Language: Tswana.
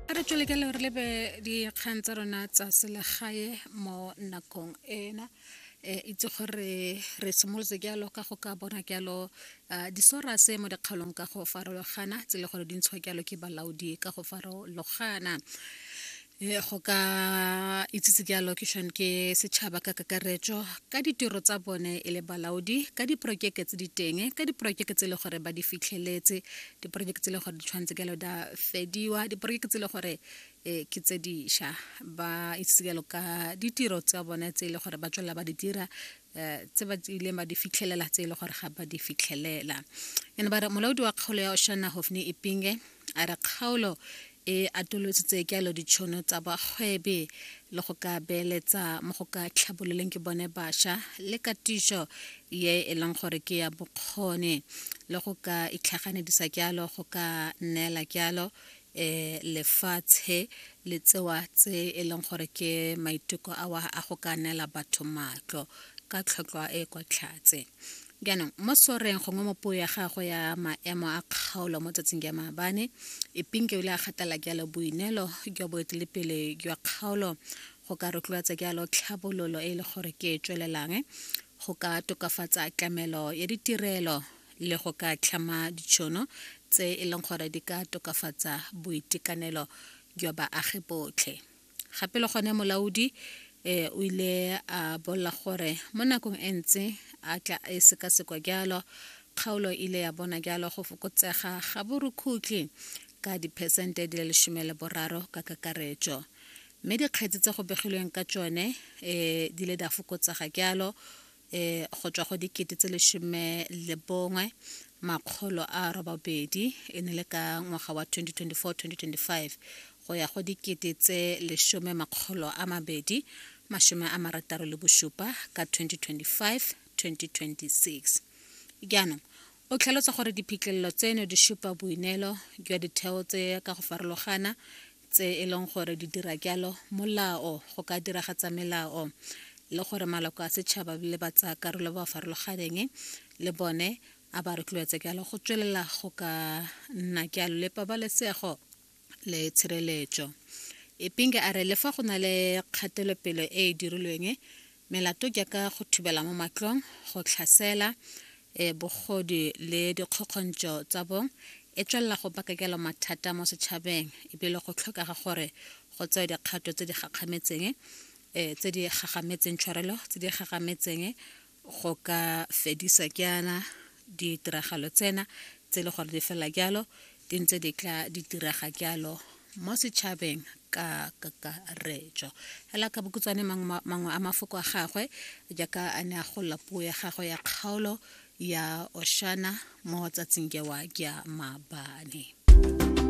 a re tswele ka le re lebe dikgang tsa rona tsa selegae mo nakong ena e itse gore re simolotse jalo ka go ka bona jalo disorase mo dikgaolong ka go farologana tse le gore di ntshwa jalo ke balaodi ka go farologana Eh, go ka itsitse ke allocation ke setšhaba ka kakaretso ka ditiro tsa bone e le balaodi ka diporokeke tse di teng ka diporokeke tse e le gore ba di fitlheletse diporokeke tse e le gore di tshwanetse kalo da fediwa diporokeke tse e le gore um ke tse dišwa ba itsitse kalo ka ditiro tsa bone tse e le gore ba tswelela ba di dira Eh, tse ba ileng ba di fitlhelela tse e le gore ga ba di fitlhelela ene ba re molaodi wa kgaolo ya oshana hofne ipinge a re kgaolo e atolositse kelo ditšhono tsa bagwebi le go ka beeletsa mo go ka tlhabololeng ke bone bašwa le katišo ye e leng gore ke ya bokgoni le go ka itlhaganedisa kyalo go ka neela kyalo um lefatshe le tsewa tse e leng gore ke maiteko a wa a go ka neela batho matlo ka tlhotlhwa e kwa tlhatse Jaanong mo soreng gongwe mo puo ya gagwe ya maemo a kgaolo mo tsatsing ya maabane, Ipinke o ile a gatelela jalo boineelo jwa boetelepele jwa kgaolo go ka rotloetsa jalo tlhabololo e e le gore ke e tswelelang, go ka tokafatsa tlamelo ya ditirelo le go ka tlhama ditšhono tse e leng gore di ka tokafatsa boitekanelo jwa baagi botlhe. gape le gone molaodi eh, o ile a bolela gore mo nakong e ntse a tla e sekasekwa jalo kgaolo e ile ya bona jalo go fokotsega ga borukhutlhi ka diphesente di le lesome le boraro ka kakaretso mme dikgetsi tse go begilweng ka tsone um di le di a fokotsega jalo e go tswa go dikete tse lesome le bongwe makgolo a robabedi e ne le ka ngwaga wa 2024-2025 go ya go dikete tse lesome makgolo a mabedi masome a marataro le bosupa ka 2025-2026 jaanong o tlhalosa gore diphitlhelelo tseno di supa boineelo jwa ditheo tse ka go farologana tse e leng gore di dira jalo molao go ka diragatsa melao le gore maloko a setšhaba le ba tsaya karolo ba farologaneng le bone a ba rotloetse jalo go tswelela go ka nna jalo le pabalesego le tshireletso epinge a re le fa go na le kgatelopele e e dirilweng Melato jaaka go thubela mo matlong, go tlhasela, e, bogodi le dikgokgontšo tsa bong e tswelela go baka jalo mathata mo setšhabeng e bile go tlhokega gore go tsewe dikgato tse di gakgametseng e, tse di gagametseng tshwarelo tse di gagametseng go ka fedisa jaana Ditiragalo tsena tse e le gore di fela jalo di ntse di tla di diraga jalo mo setšhabeng ka kakaretso fela ka bokutswane mangwe a mafoko a gagwe jaaka a ne a golla puo ya gagwe ya kgaolo ya oshana mo tsatsing jewa ja mabane